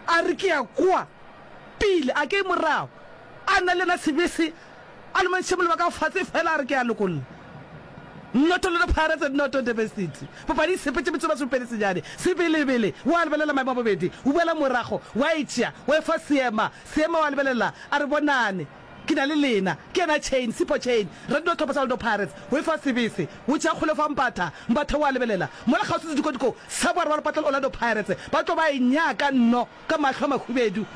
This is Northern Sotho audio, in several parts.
A re, Ke a kwa pele, a ke morago. A nna le yena sebese, a lomantšhe molomo wa ka fase fela, a re, Ke a lokolla. Noto Lona Pirates, noto Durban City. Papadi e sepetše metsomasome pedi senyane. Sebelebele, o a lebelela maemo a bobedi, o boela morago, wa e tšea, wa e fa Seema. Seema o a lebelela, a re, Bonane. Ke na le lena. Ke yena Chain, Sipho Chain. Re dino tlhopha sa Orlando Pirates. O e fa sebese. O tšea kgole o fa Mbatha. Mbatha o a lebelela. Mola kgauswi sedikotiko sa boarwa le patlelo Orlando Pirates. Ba tlo ba e nyaka nno ka mahlo a mahubedu.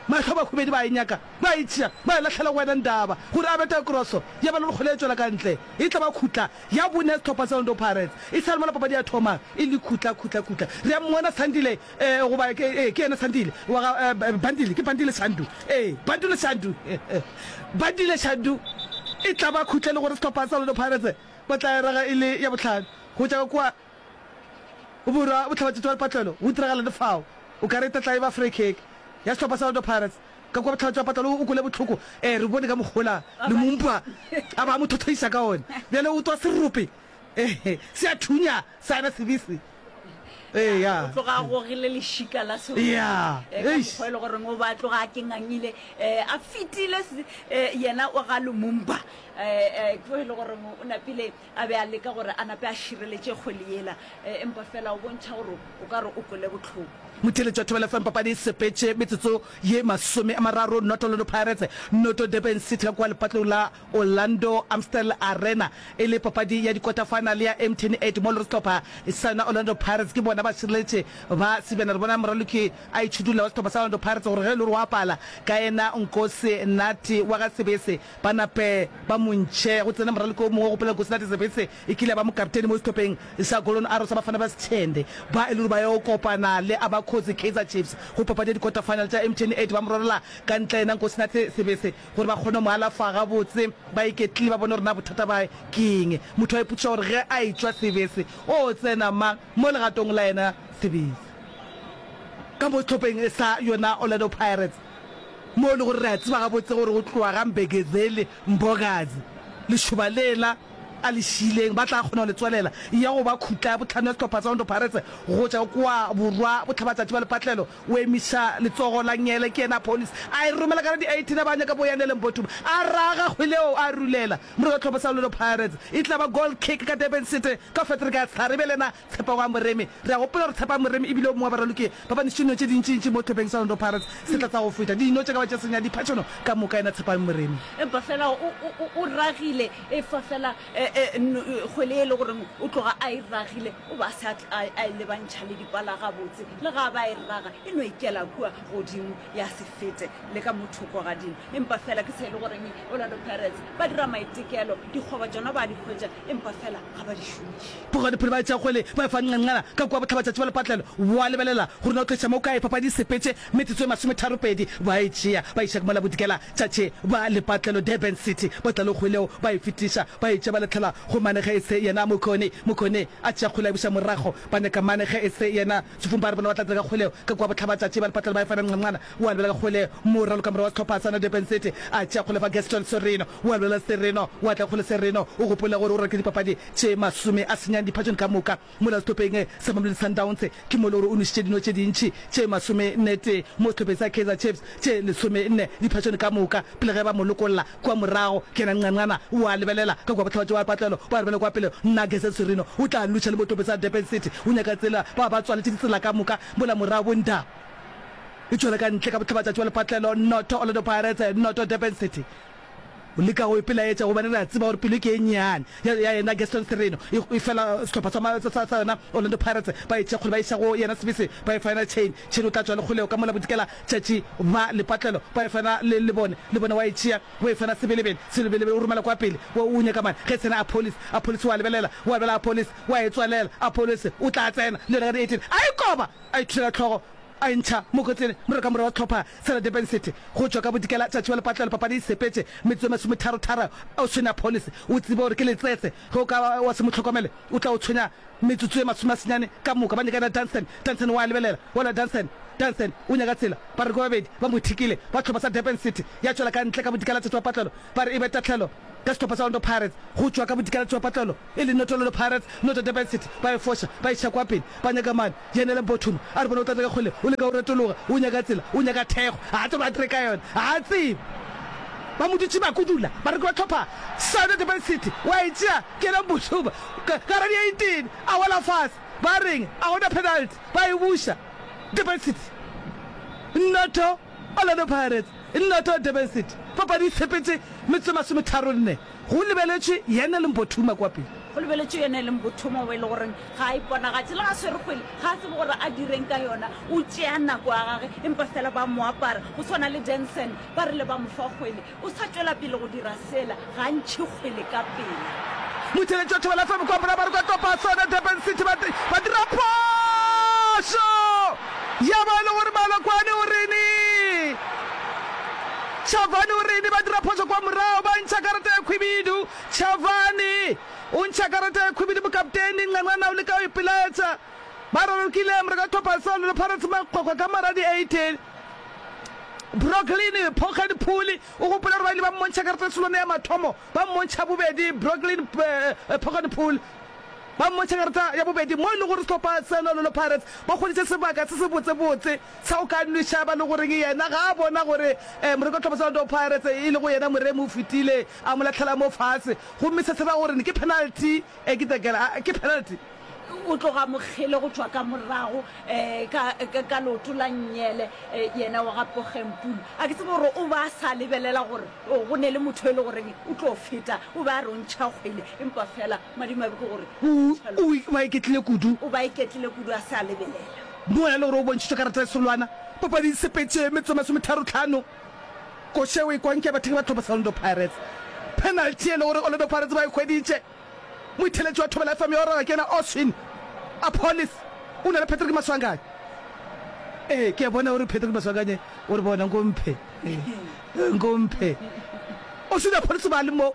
Mahlo a mahubedu ba e nyaka. Ba e tšea. Ba e lahlela go wena Ndaba. Gore a bete kroso. Ya ba le gore kgole e tšwela ka ntle. E tla ba khutla ya bone ya setlhopha sa Orlando Pirates. E sa le mola papadi ya thoma. E le khutla, khutla, khutla. Re a mmona Sandile Ee, goba ke, ee, ke yena Sandile wa ga, eh, Bandile, ke Bandile Shandu. Ee, Bandile Shandu. Bandile Shandu e tla ba khutla e le gore sehlopha sa Orlando Pirates ba tla erega e le ya bohlano go tša kwa borwa bohlabatšatši wa lepatlelo. Go diragala le fao, o ka re e tla tla e ba free kick ya sehlopha sa Orlando Pirates ka kwa bohlabatši wa patlelo o kwele bohloko. Ee, re bone ka mokgola Lumumba a ba mo thothoiša ka one, bjale o twa serope, ee, se a thunya sa na sebese. Ee, ya. o tloga a gogile lešika la seroto Ya, Eh, ka eish. mokgwa e le goreng o ba a tloga a kengangile um a fetile se- eh, yena o ga lumumba um tlo e le goreng o napile a be a leka gore a nape a šireletše kgwele yela Eh, empa fela o bontšha gore o ka re o kwele botlhoko motheletšo wa thobela fm papadi e sepetše metsotso ye masome a mararo noto lodo pirates noto durban city ka kwa lepatlong la Orlando Amstel Arena e le papadi ya dikota-final ya MTN 8 mo lore sehlopha sana Orlando Pirates ke bona ba šireletše ba sebjana. Re bona moraloki a itšhudulla wa sehlopha sa Orlando Pirates gore ge e le gore wa pala ka yena Nkosi Nati wa ga Sebese ba nape ba mo ntšhe go tsene moraloki o mongwe go pela Nkosi Nati. Sebese e kile ya ba mokapteni mo sehlopeng sa Golden Arrows sa Bafana ba Sechende ba e le gore ba yo kopana le Abakhosi Kaizer Chiefs go papadi ya dikota-final tša MTN 8 ba mo rorola ka ntle yena Nkosi Nati Sebese. Gore ba kgone go mo alafa gabotse, ba iketlile ba bone gore na bothata ba gagwe ke eng. Motho a ipotšiša gore ge a etšwa sebese, o tsena mang mo legatong la yena sebese. Ka mo sehlopeng sa yona Orlando Pirates, mo e le gore re a tseba gabotse gore go tloga ga Mbegezeli Mbokazi, lešoba lela a le šiileng, ba tla kgona go le tswalela ya go ba khutla ya bohlano ya sehlopha sa Orlando Pirates go tšwa kwa borwa bohlabatšatši ba lepatlelo. O emiša letsogo la Nyele ke yena a police a e romela ka la di 18 a ba a nyaka Boyane le Mbotuma a raga kgwele eo a rulela mora wa tlhopho sa Orlando Pirates e tla ba goal kick ka Durban City ka Frederick a Tsari bjale yena Tshepagwa a Moremi re a gopola gore Tshepagwa Moremi e bile o mongwe wa baraloki ba ba nešitše dino tše dintšintši mo tlhopheng sa Orlando Pirates se tla tsa go feta dino tše ka ba tše senya diphatšono ka moka yena Tshepagwa Moremi. Empa fela o ragile efa fela Kgwele e le goreng o tloga a e ragile o ba se a e lebantšha le dipala gabotse, le ga a ba e raga e no ikela kua godimo ya se fete le ka mo thoko gadimo. Empa fela ke se e le goreng Orlando Pirates ba dira maitekelo, dikgoba tšona ba a di hwetša empa fela ga ba di šomiše. Bogadiphiri ba e tšea kgwele ba e fa Nqanqana ka kua bohlabatšatši bja lepatlelo. O a lebelela gore na o tliša mo kae, papadi e sepetše metsotso e masometharo-pedi ba e tšea ba iša ke mola Bodikela Tšatši ba lepatlelo Durban City ba tla le kgweleo ba e fetiša ba etše ba latlhela go mane ge e se yena Mokone Mokone a tšea kgwele a e buša morago ba nyaka mane ge e se yena Tšhufung ba re bona ba tla dira ka kgweleo ka kua bohlaba tšatši ba lepatlelo ba efa Nqamqana wa lebelela kgwele mo raloka morwa wa sehlopha sa na Durban City a tšea kgwele fa Gaston Sereno wa lebelela Sereno wa tla kgwele Sereno o gopola gore o rwa ke dipapadi tše masome a senyang diphatšong ka moka Mola sehlopheng sa Mamelodi Sundowns ke mo e le gore o nwešitše dino tše dintši tše masomennetee mo sehlopheng sa Kaizer Chiefs tše lesomenne diphasone ka moka pele ge ba mo lokolla kua morago. Ke yena Nqanqana o a lebelela ka kua bohlabatši ba patlelo o a re bjale kua pele nna Gazette Sirino o tla lutšha le bohlopheng sa Durban City o nyaka tsela ba ba tswaletše ditsela ka moka mola morago bo Nda e tšwela ka ntle ka bohlabatšatši ba lepatlelo noto Orlando Pirates noto Durban City. O leka go ipelaetša gobane re a tseba gore pelo ke e nnyane ya, ya yena Gaston Sirino e, e fela sehlopha sa, ma, sa, sa, sa yona Orlando Pirates ba e thekgole ba iša go yena sebese ba e faena chain, chain o tla tšwa le kgoleo ka mola bodikela tšatši ba lepatlelo ba e faena le, le bone, le bone wa e tšea wa e faena sebelebele, sebelebele o romela kwa pele wa o nyaka mane ge e tsena Apollis, Apollis wa lebelela wa bela Apollis wa e tswalela Apollis o tla tsena le yona ka di 18 a e koba a ithulela hlogo A ntšha mokotleng mo re ka morago tlhopha Sarah Durban City go tšwa ka Bodikela tšatši wa lepatlelo papadi e sepetše metsotso e masometaro tharo Oceana Police o tsebe gore ke letsetse ge o ka ba wa se mo hlokomele o tla o tshwenya metsotso e masome a senyane ka moka ba nyakana Dunstan Dunstan wa lebelela wa la Dunstan Dunstan o nyaka tsela ba re ke babedi ba mo thikile ba tlhopha sa Durban City ya tšwela ka ntle ka Bodikela tšatši wa patlelo ba re e be tahlelo ka sehlopha sa Orlando Pirates go tšwa ka Bodikela tšatši wa patlelo e le Notololo Pirates, Noto Durban City, ba e foša, ba iša kwa pele, ba nyaka mane, Dianela Mbothuma a re bona o tlatla ka kgoleng, o leka go retologa, o nyaka tsela, o nyaka thekgo, ga a tsebe a dire ka yona, ga a tsebe. Ba mo dutše ba kudula, bareki ba tlhopha Soto Durban City, wa e tšea ke ena Mbothuma, ka, ka radio e tene, a wela fase, ba reng, a go na penalty, ba e buša, Durban City Noto, Orlando Pirates Noto, Durban City, papadi e tshepetše metsotso e masometharo-nne. Go lebeletšwe yena e leng bothuma kwa pele. Go lebeletšwe yena e leng bothuma wa e le goreng ga a iponagatše. Le ga a swere kgwele, ga a tsebe gore a direng ka yona. O tšea nako ya gage empa fela ba mo apara. Go swana le Denson, ba rile ba mo fa kgwele. O sa tšwela pele go dira sela, ga a ntšhe kgwele ka pela. Motšheletši wa Thobela FM kwa Bora ba re kwa Topasona, Durban City ba ba dira phošo ya ba e le gore Malokwane o rene. Chavani o rile ba dira phošo kwa morago, ba ntšha karata ya khwibidu. Chavani o ntšha karata ya khwibidu mokapteini Nganwana o leka go ipelaetša. Ba rorokile morago ga tlhopha Sound le Pirates makgokgo ka mora di 18. Brooklyn Phokgadi Phuli o gopola gore ba ile ba mmontšha karata tšholwane ya mathomo, ba mmontšha bobedi. Brooklyn Phokgadi Phuli ba mmontšha karata ya bobedi mo e lego gore sehlopha seno le Pirates ba hweditše sebaka se se botsebotse. Sa o ka no šaba le goreng yena ga a bona gore Moreko Tlhobosa wa Dou Pirates e lego yena moremi o fetile a mo lahlela mo fase gomme se se ra gore ke penalty e ke tekela a ke penalty. O tloga mokgele go tšwa ka morago ka ka leoto la Nnyele yena wa ga Pogempulu. A ke tsebe gore o ba a sa lebelela gore go ne le motho e le goreng o tlo feta o be a rontšha kgwele empa fela Madimabe ke gore o o iketlile kudu. O ba iketlile kudu a se a lebelela. Moya le gore o bontšhitšwe karata e solwana papading Sepetše metsotso e masometharo-tlhano. Koša e o e kwang ke ya bathekgi ba tlhopho sa Orlando Pirates. Penalty e le gore Orlando Pirates ba e hweditše. Moitheletši wa thobela FM ya Oroga ke yena Oswin Appollis. O na le Patrick Maswanganyi. Ee, ke a bona o re Patrick Maswanganyi o re bona nko mphe. Nko mphe. Oswin Appollis o ba a le mo.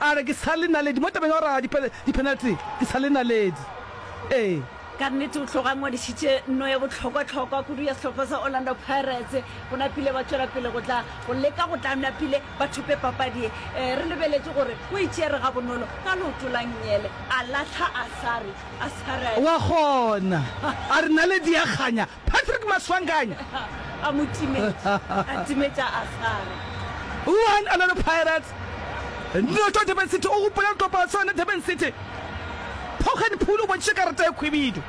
A re, Ke sa le naledi. Mo tabeng ya go raga diphenalti, ke sa le naledi. Ee. Ka nnete, o tloga a ngwadišitše nno ya bohlokwa-hlokwa kudu ya sehlopha sa Orlando Pirates. Go napile ba tšwela pele go tla go leka go tla napile ba thope papadi ye. Re lebeletše gore o e tšere gabonolo ka leoto la nnyele, a lahla Asare. Asare a. Wa kgona! A re, Naledi ya kganya. Patrick Maswanganyi a mo timetša, a timetša a gare. One Orlando Pirates, noto Durban City, o gopola go kopana sa yona Durban City. Pogen Pool o bontšitše karata ya khwibidu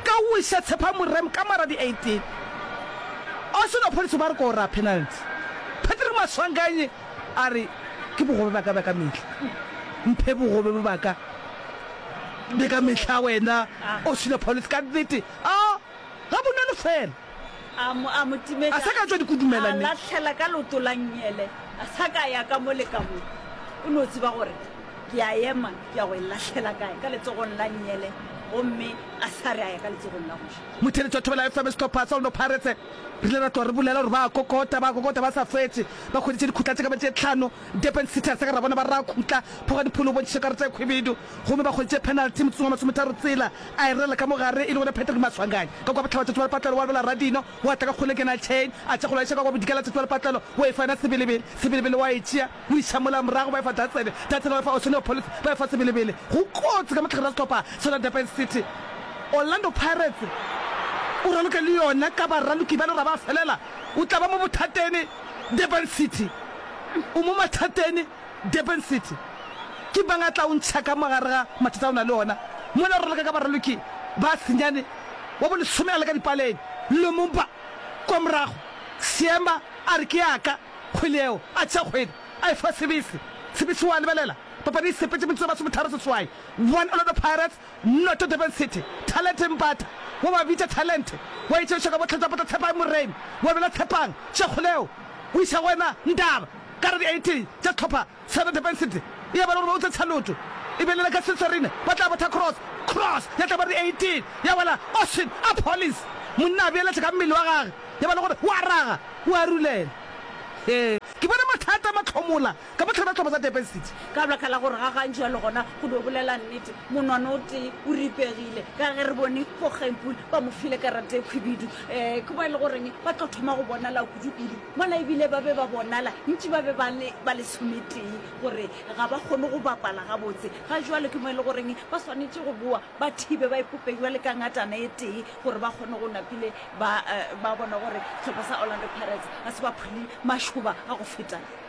ka go iša Tshepha Morem ka morago di 18. Austin Opholiso ba re ke o raa penalty. Patrick Maswanganyi A re, Ke bogobe baka bja ka mehla. Mphe bogobe bo baka bja ka mehla wena o sila Paulus ka nnete. A ga bo none fela. A mo, a mo timetša. A sa ka tšwa dikudumela, mme. A lahlela ka leoto la nnyele, a sa ka ya ka mo le ka mo. O no tseba gore ke a ema, ke ya go e lahlela kae, ka letsogong la nnyele, gomme a sa re a ya ka letsogong la go ja. Motheletši wa thobela FM sehlopha sa Orlando Pirates. Re ile ra tloga re bolela gore ba a kokota, ba a kokota ba sa fetse. Ba hweditše dikhutla tše ka ba tše tlhano. Durban City ya segera bona ba raya khutla pho ga dipholo o bontšhitše karata ya khwibidu gomme ba hweditše penalty motseng wa masometharo tsela, a e rerela ka mo gare e le gona Patrick Maswanganyi. Ka kwa bohlaba Tsatsi wa Lepatlelo wa lwela Radino, wa tla ka kgole Kenal Chain a tša go lwaiša ka kwa bodikela Tsatsi wa Lepatlelo wa e faena sebelebele, sebelebele wa e tšea. Go iša mola morago, ba efa Datsebe, Datsebe ba efa Oceanopolis, ba efa Sebelebele. Go kotsi ka mohlagare wa sehlopha sona Durban City. Orlando Pirates o raloke le yona ka baraloki ba lora ba felela. O tla ba mo bothateni Durban City. O mo mathateni Durban City. Ke mang a tla o ntšha ka mo gare ga mathata a o na le ona? Mola o raloka ka baraloki ba senyane wa bolesome a le ka dipaleng. Lumumba kwa morago, Seema a re ke ya ka. kgwele yeo, a tšea kgwele, a e fa Sibisi. Sibisi o a lebelela. Papadi e sepetše metsotso e masometharo-seswai. One Orlando Pirates, noto Durban City. Talente Mpata, wa ba bitša Talente, wa e tšeiša ka bohlatšwa potla Tshepang Moremi, wa bela Tshepang tšekgole yeo, o iša go wena Ndaba, ka re di 18 tša sehlopha Sarah Durban-Sydney e abela gore ba utse tshaloto e be lela ka Setswarine ba tla botha cross, cross ya tla ba re 18 ya wela Ocean a Pollies monna a beeletša ka mmele wa gage ya ba le gore wa raga wa arulela he ke bone mathata a mahlomola ka bohlena tlhobo tsa Durban City. Ka baka la gore ga gantšwa le gona go no bolela nnete monwana o tee o ripegile ka ge re bone Voggenpoel ba mo file karata e khwibidu eh ke mo e le goreng ba tlo thoma go bonala kudu kudu Mola ebile ba be ba bonala ntši ba be ba le ba lesometee gore ga ba kgone go bapala gabotse. Ga jwalo ke mo e le goreng ba swanetše go boa ba thibe ba ipope bjale ka ngatana e tee gore ba kgone go napile ba, uh, ba bona gore sehlopha sa Orlando Pirates ga se ba phule mašoba a go feta.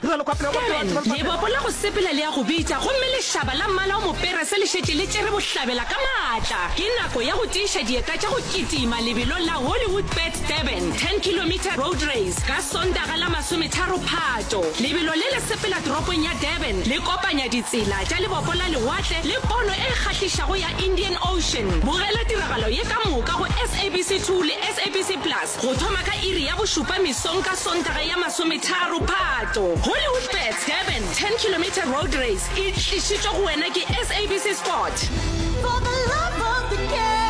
Karen, lebopo la go sepela le ya go bitša, gomme lešaba la mmala o moperese le šetše le tšere bohlabela ka maatla. Ke nako ya go tiiša dieta tša go kitima lebelong la Hollywoodbets Durban 10 kilometre road race ka Sontaga la masometharo Phato. Lebelo le le sepela toropong ya Durban le kopanya ditsela tša lebopo la lewatle le pono e kgahlišago ya Indian Ocean. Bogela tiragalo ye ka moka go SABC 2 le SABC Plus. Go thoma ka iri ya bošupa mesong ka Sontaga ya masometharo Phatlo, Hollywoodbets Durban 10 Kilometre Road Race e tlišitšwe go wena ke SABC Sport. For the love of the game.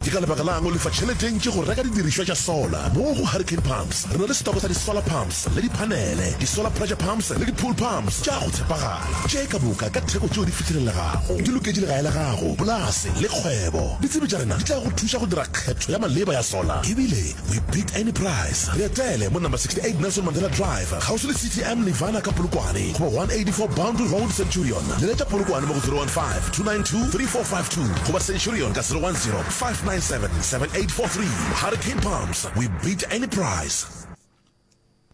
Ke ka lebaka la'ng o lefa tšhelete e ntši go reka didirišwa tša solar? Mo go Hurricane Pumps re na le setoko sa di-solar pumps Pumps le diphanele, di-solar pressure pumps le di-pool pumps tša go tshepagala tše ka moka ka theko tšeo di fihlelelegago, di loketše legae la gago, polase le kgwebo. Ditsebi tša rena di tla go thuša go dira kgetho ya maleba ya solar ebile we beat any price. Re etele mo Number 68 Nelson Mandela Drive, kgauswi le City am Nirvana ka Polokwane, goba 184 Boundary Road, Centurion. Leletša Polokwane mo go 015-292-3452 goba Centurion ka 010-597-7843. Hurricane Pumps, we beat any price.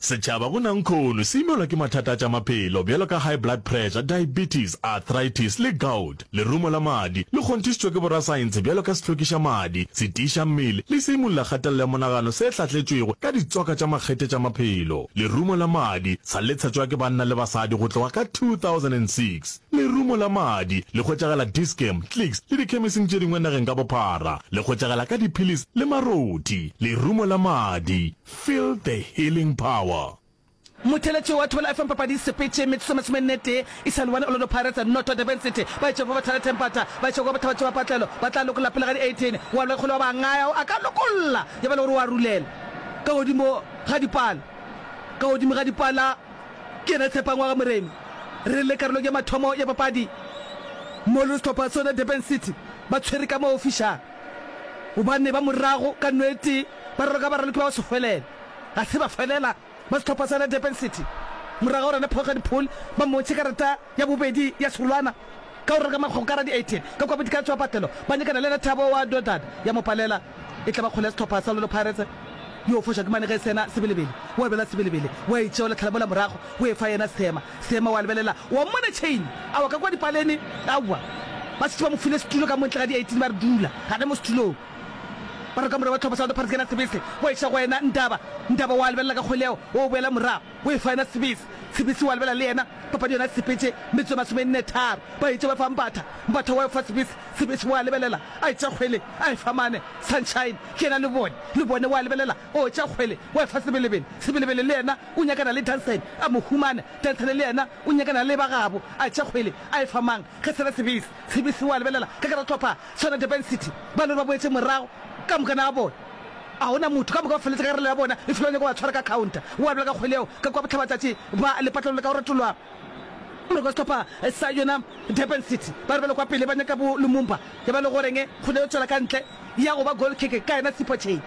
Setšhaba go nankhono se imelwa ke mathata a tša maphelo bjalo ka high blood pressure, diabetes, arthritis le gout. Lerumo la madi le kgonthišitšwe ke borasaentshe bjalo ka sehlokišamadi, setiišammele le seimolola kgatelelo ya monagano se hlatletšwego ka ditswaka tša makgethe tša maphelo. Lerumo la madi sa le tshetšwa ke banna le basadi go tloga ka 2006. Lerumo la madi le hwetšagala Dis-Chem, Clicks le dikhemising tše dingwe nageng ka bophara. Le hwetšagala ka diphilis le marothi. Lerumo la madi. Feel the healing power. Motheeletši wa Thobela FM Papadi Sepetše metsotso masome nne tee e sa le one Orlando Pirates and noto Durban City ba etše go Bothata Tempata ba etše go ba Bathabatši ba Patlelo ba tla lokolla pele ga di 18 wa Loy Kgole wa Bangaya o a ka lokolla ya ba le gore o a rulela ka godimo ga dipala ka godimo ga dipala ke yena Tshepangwaga Moremi re le karolong ya mathomo ya papadi mo le sehlopha sona Durban City ba tshwere ka mo ofišang gobane ba morago ka nwete ba raloka baraloki ba go se hwelele ga se ba felela ba sehlopha sa Durban City morago ga gore Nepoge Diphol ba mmontšhe karata ya bobedi ya serolwana ka go raloka magokara di 18 ka kua bodika tšwa patelo ba nyakana le Lethabo wa Dodad ya Mopalela e tla ba kgole ya sehlopha sa Lolo Pirates yo o foša ke mane ge e sena Sebelebele o a belela Sebelebele o a e tšeola Tlhalamola morago o e fa yena Seema Seema o a lebelela o a mmona Chain a wa ka kua dipaleni aowa ba setse ba mo file setulo ka montle ga di 18 ba re dula gane mo setulong Barwa ka morwa wa tlhopho South Parks yena Sibisi wa iša go yena Ndaba, Ndaba wa lebelela ka kgolego wo boela morago wo efa yena Sibisi, Sibisi wa lebelela le yena papadi yona Sepetše metso ye masome nne tharo ba itše ba fa Mbatha, Mbatha wa efa Sibisi, Sibisi wa lebelela a itša kgwele a efa mane Sunshine ke yena Lebone, Lebone wa lebelela o tša kgwele wa efa Sebelebele, Sebelebele le yena o nyakana le Dansane a mo humana, Dansane le yena o nyakana le ba gabo a tša kgwele a efa mang ge sena Sibisi, Sibisi wa lebelela ka gare tlhopha Swana Durban City, ba no re ba boetše morago ka moka na bona. A go na motho, ka moka ba feletše ka relo ya bona, e fela ba nyaka go ba tshwara ka khaonta. Gwa bjala ka kgwele yeo, ka kwa bohlabatšatši ba lepatlelo le ka go retolwa gore kwa sehlopha sa yona Durban City ba re ba le kwa pele ba nyaka bo Lumumba, ya ba le goreng kgwele yo tšwela ka ntle ya go ba goal kick ka yena Sipho Chain.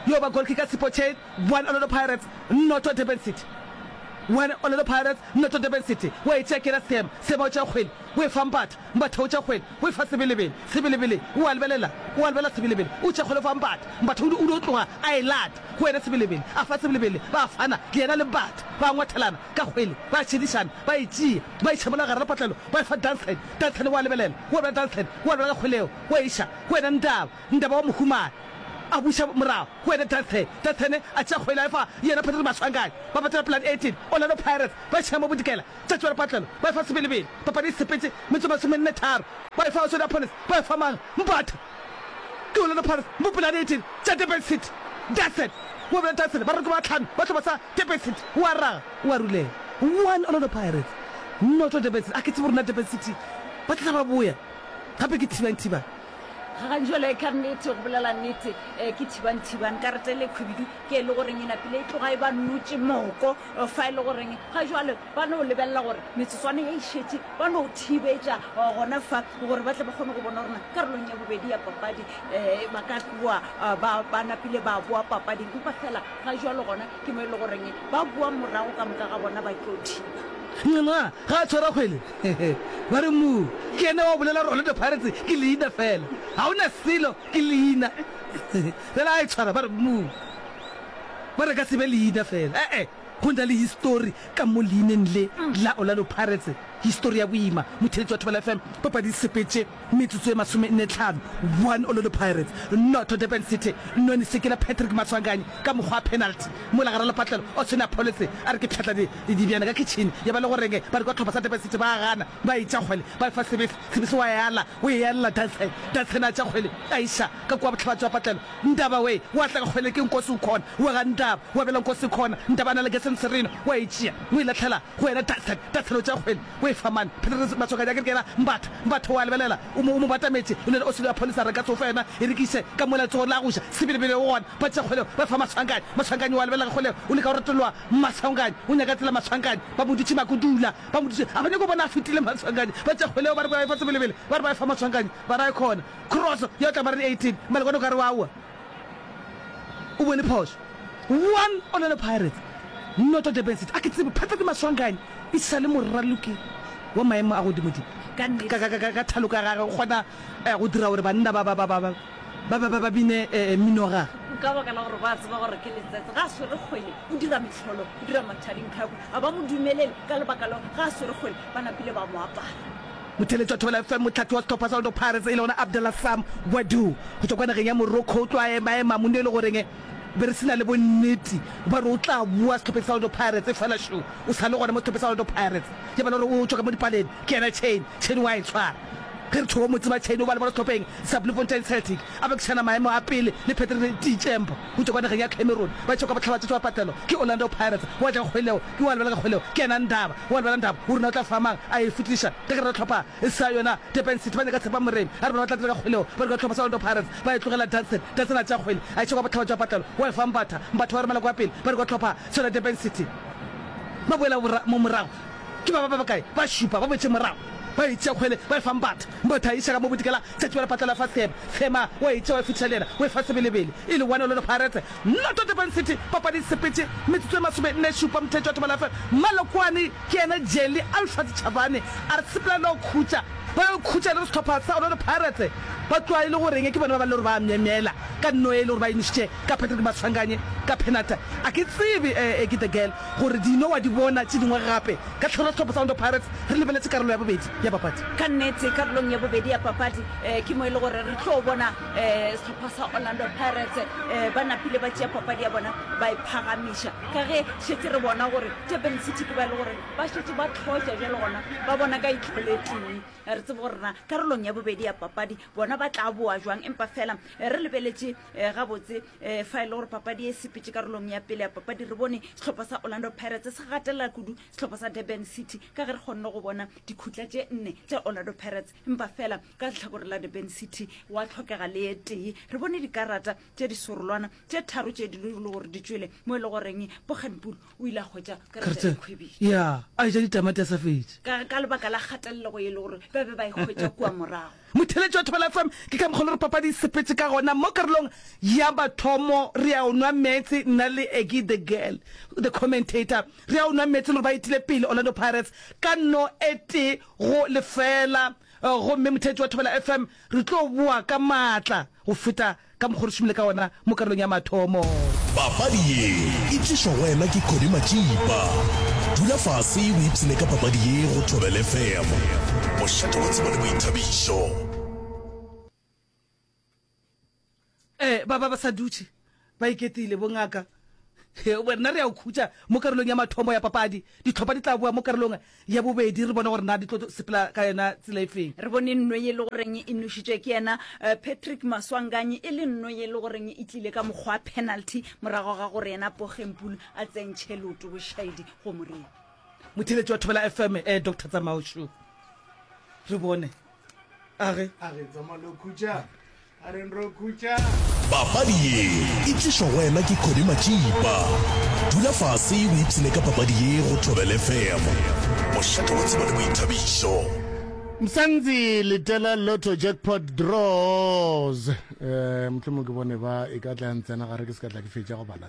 Yo ba goal kicker Sipho Chain, one Orlando Pirates noto Durban City. One Orlando Pirates noto Durban City, wa e tšea ke yena Sam, Sam wa tšea kgwele, wa e fampata, Mpatha o tša kgwele, o e fa sebelebele. Sebelebele o a lebelela, o a lebelela sebelebele, o tša kgwele o fa Mpatha. Mpatha o di, o dio tloga a e lata go yena sebelebele, a fa sebelebele. Ba fana, yena le Mpatha, ba ngwathelana ka kgwele, ba šedišana, ba e tšea, ba e tšhabola gare ga patlelo, ba e fa Dunstan. Dunstan o a lebelela, o a lebelela Dunstan, o a lebelela ka kgwele yeo, o e iša go yena Ndaba. Ndaba wa mo humana, a buša morago go yena Dunstan. Dunstan a tšea kgwele a e fa yena Patrick Maswanganyi. Ba patela pelane e tee, Orlando Pirates ba e tšhea mo Bodikela. Tšatši la Lepatlelo ba efa Sebelebele, papadi e sepetše metso e masomenne tharo. Ba efa Asonia Palace, ba efa mang? Mbatha. Ke Orlando Pirates, Mopela a Dieting, tša Durban City. Dassen, wa bjale Dassen, baroko ba tlhano ba hlopha sa Durban City, o a raga, o a rulela. One Orlando Pirates, noto Durban City, a ke tsebe gore na Durban City ba tla tla ba boya gape ke Thiban Thiban. Gaganjole, Ka nnete, go bolela nnete, ke Thiban Thiban. Karete e le khwibidu ke e le goreng e napile e tloga e ba notše moko. Eh, fa e le goreng ga jale ba no lebelela gore metsotswane ya išetše ba no thibetša eh, gona fa gore ba tle ba kgone go bona gorena karolong ya bobedi ya papadi um ba ka tloa eh, ba ba napile ba boa papading empa fela ga jalo gona ke mo e le goreng ba boa morago ka moka ga bona ba tlo thiba yona ga a tshwara kgwele ba re mo ke ene wa bolela gore orlando pirates ke leina fela ga o na selo ke leina fela a e tshwara ba re mo Ba re ka se be leina fela. E-e, go na le histori ka mo leineng le la Orlando Pirates. Histori ya boima. Motheletši wa Thobela FM, Papadi e sepetše metsotso e masomenne-tlhano, 1 Orlando Pirates, noto Durban City. Noni Sekela, Patrick Maswanganyi ka mokgwa wa penalty. Mola gare lepatlelo, Oswin Apholetse a re ke pšhatla dibjana ka khitšhini. Ya ba le go renge, ba re kwa tlhopha sa Durban City ba a gana. Ba e tša kgwele, ba e fa Sebesi, Sebesi wa e ala, o e alela Duncan, Duncan a tša kgwele, a iša, ka kua bohlaba bja patlelo, Ntaba we, wa tla ka kgwele ke Nkosi o khona, wa ga Ntaba, wa bela Nkosi khona, Ntaba a na le Gesen Serena, wa e tšea, o e lahlela go yena Duncan, Duncan o tša kgwele, o e fa mane, Petrus Matswakadi a ke re ke yena Mbatha, Mbatha wa lebelela, o mo, o mo batametše, o na le Osilo ya Pholisa, re ka se o fe yona, e rekiše ka mola letsogong la go ja, Sebelebele o gona, ba tša kgwele ba e fa Maswanganyi, Maswanganyi wa lebelela ka kgwele, o leka go reteloa Maswanganyi, o nyaka tsela Maswanganyi, ba mo dutše Makudula, Ba mmotšiše, a ba nyake go bona a fetile Matswanganyi. Ba tšea kgwele yeo ba re ba e fa Sebelebele, ba re ba e fa Matswanganyi, ba ra e kgona. Crosso ya tla ba re di 18, mara gona o ka re wa wa. O bone phošo. One Orlando Pirates, noto Durban City. A ke tsebe, phethwa ke Matswanganyi e sa le moraloki wa maemo a godimodimo. Ka, ka, ka, ka, ka, ka thalo ka gage o kgona go dira gore banna ba, ba, ba, ba, ba. ba ba ba ba bine eh, mminoga. Ka baka la gore ba tseba gore ke letsatsi, ga a swere kgwele, o dira metlholo, o dira mathari nkhakwe, ga ba mo dumelele, ka lebaka leo ga a swere kgwele, ba napile ba mo apara. Motheletša Thobela FM, mohlathi wa sehlopha sa Orlando Pirates e le gona Abdallah Sam Gwadoo go tšwa kwa nageng ya Morocco o tlo a emaema mone e le goreng be re sena le bonnete ba re o tla boa sehlopeng sa Orlando Pirates e fela šo o sa le gona mo sehlopeng sa Orlando Pirates ke bala gore o tšwa ka mo dipaleng ke yena Chain Chain wa e tshwara Ge re thoba motse, Matšhaine o ba le bona sehlopheng sa Bloemfontein Celtic a bekišana maemo a pele le Patrick Tiichembo go tšwa kwa nageng ya Cameroon. Ba tšwa kwa bohlabatšo tšwa patelwa ke Orlando Pirates. Wa tla kgweleo ke wa lebala ka kgweleo ke yena Ndaba. Wa lebala Ndaba o rena o tla fa mang a e fetliša ka gare ga hlopha sa yona Durban City. Ba nyaka Tshepa Moremi a re bona ba tla dira ka kgweleo ba dira hlopha sa Orlando Pirates ba e tlogela Danson. Danson a tšea kgwele a iša kwa bohlaba tšwa patelwa wa e fa Mbatha. Mbatha wa romela kwa pele ba dira kwa hlopha sa yona Durban City ba boela morago. Ke ba ba ba bakae? Ba šupa, ba boetše morago, ba e tšea kgwele, ba e fa Mbatha. Mbatha a e iša ka mo bodikela, tša tšibela patla la fa Thema. Thema o a e tšea, o e fetisa le yena, o e fa Sebelebele. E le one Orlando Pirates, noto Durban City. Papadi e sepetše, metsotso e masomenne-šupa, Mthethwa Thobalafe Malokwane ke yena jelly, Alfred Chavani a re sepela le go khutša. Ba yo khutša e le go sehlopha sa Orlando Pirates, ba tloga e le go reng ke bona ba ba le gore ba a myemyela ka nnoye e le gore ba emišitše ka Patrick Maswanganyi ka phenata. A ke tsebe e ke the girl. Gore dino wa di bona tše dingwe gape ka Tlhorotlhopo sa Orlando Pirates re lebeletše karolo ya bobedi ya papadi. Ka nnete, karolong ya bobedi ya papadi ke mo e le gore re tlo bona sehlopha sa Orlando Pirates ba napile ba tšea papadi ya bona ba e phagamiša ka ge šetše re bona gore Durban City ke ba e le gore ba šetše ba tlhotša bjale gona ba bona ka itlholetee. Ga re tsebe gore na karolong ya bobedi ya papadi bona ba tla boa jwang empa feela re lebeletše gabotse um fa e le gore papadi e sepetse karolong ya pele ya papadi re bone setlhopha sa orlando pirates se gatelela kudu setlhopha sa durban city ka ge re kgonne go bona dikhutla tše nne tša orlando pirates empa fela ka letlhakore la durban city wa tlhokega le ye tee re bone dikarata tše disorolwana tše tharo tše dilo le gore di tswele mo e le goreng bokganpulo o ile a hwetša karata ya Keretse- khwebiša ya a eja ditamati a sa fetše ka ka lebaka la kgatelelego e le gore ba be ba e hwetša kua morago motheletši wa thobela fm ke ka mokgwa le re papadi e sepetse ka gona mo karolong ya bathomo re a o nwa meetse nna le egi the girl the commentator re a o nwa meetse le gore ba etile pele orlando pirates ka no e tee go lefela Eh, gomme motheletši wa thobela fm re tlo boa ka maatla go feta Ka mokgwa o re šomile ka wona mo karolong ya mathomo. Papadi ye e tlišwa go wena ke Connie Matšipa. Dula fase o ipshine ka papadi ye go Thobela FM. Bošate bo tseba le boithabišo. Ee, ba ba ba sa dutše ba iketile, bongaka. Rena re a o khutša mo karolong ya mathomo ya papadi. Ditlhopha di tla boa mo karolong ya bobedi re bone gore na di tlo sepela ka yona tsela e feng. Re bone nno ye e le goreng e nošitšwe ke yena Patrick Maswanganyi e le nno ye e le goreng e tlile ka mokgwa wa penalty morago ga gore yena Poggenpoel a tsentšhe leoto bošaedi go moriri. Motheeletši wa Thobela FM, Doctor Tsamao Shu. Re bone. papadi ye e tlišwa go wena ke kodi matšipa dula fase o ipshine ka papadi ye go thobele fm mošate wa tsebo le boithabišo Msangzi Litela Lotto Jackpot Draws eh mohlomong ke bone ba e ka tla ntsena gare ke se ka tla ke fetša go bala